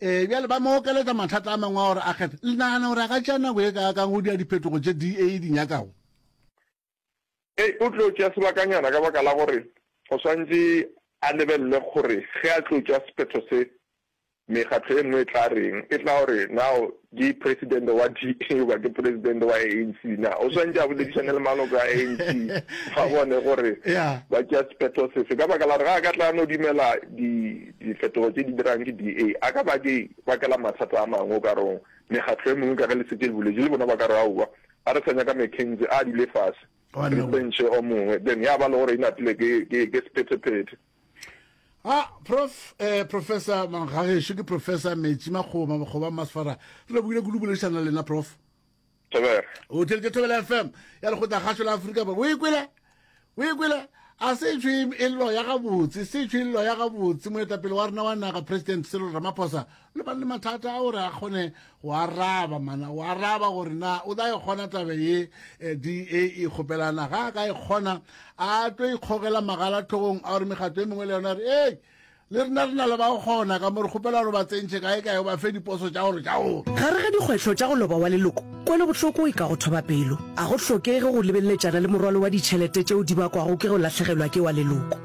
Ee, bjale ba mo okeletša mathata a mangwe a gore a kgethe. Le nagana gore a ka tšea nako ye kaakang go dira diphetogo tše DA e di nyakago? Ee, o tlo tšea sebakanyana ka baka la gore o swantše a lebelele gore ge a tlo tšea sephetho se, mekgatlo e nngwe e tla reng. E tla o re, Nao Ke presidente wa DA goba ke presidente wa ANC? Na o swantše a boledišane le maloko a ANC ba bone gore ba tšea sephetho sefe? Ka baka la gore ga a ka tla no dumela difetogo tše di dirang ke DA, a ka ba ke bakela mathata a mangwe. O ka re mekgatlo e mengwe ka ge le setse le boletše le bona ba ka re aowa, ga re sa nyaka McKenzie, a dule fase re tsentšhe o mongwe, then ya ba le gore e napile ke sephethephethe. a prof eh, professor gagešu ke professor metši makgoba makgoba masfara re lebogile kudu boledišana le lena prof thobela o tšeletše thobela fm ya lekgotla gašo la aforika borwa o e kwele o e kwele a se tšhwe e llo ya gabotse se tšhwe e llo ya gabotse moetapele wa rena wa naga president serol ramaphosa le ba le mathata a gore a kgone go araba mana go araba gore na o tla e kgona tabe ye eh, da e kgopelana ga a ka e kgona a tlo ikgogela magala tlhogong a gore megato e mengwe le yona re ee le rena re na le ba kgona ka mo re kgopela gore ba tsentšhe kae kae ba fe diposo tša gore tša gore gare ga dikgwetlho tša go loba wa leloko kwelobohloko e ka go thoba pelo a go hlokege go lebeleletšana le morwalo wa ditšhelete tšeo di bakwago ke go latlhegelwa ke wa leloko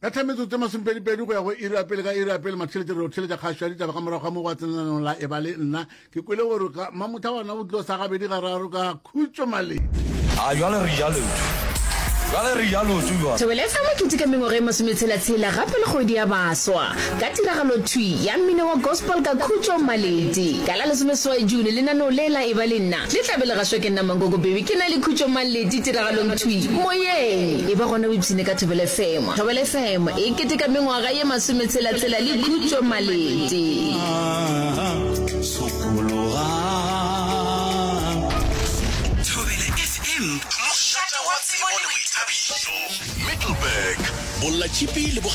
Ka 10 metsotso e masomepedipedi go ya go iri ya pele ka iri ya pele matheletše re o theletša kgašo ya ditaba ka morago ga mo go a tsenananong la e ba le nna ke kwele gore ka mamotha gona go tlo sa gabedi gararo ka khutšo maledi a jwale re ja lotho jwale re ja lotho jwale Thobela FM e keteka mengwaga e masometshela-tshela gape le kgwedi ya baswa ka tiragalo thwi ya mmino wa gospel ka khutšo maledi ka la lesomeseswai June lenaneo le la e ba le nna Le tla be le gaswa ke nna Mankoko Baby, ke na le khutšo mang ledi tiragalong thwi moyeng. E ba gona o ipshine ka Thobela FM. Thobela FM e keteka mengwaga ye masome tshela tshela le khutšo maledi. Thobela FM, mošate wa tsebo le boithabišo. Middleburg, Bollatšhipi le Bokgabane.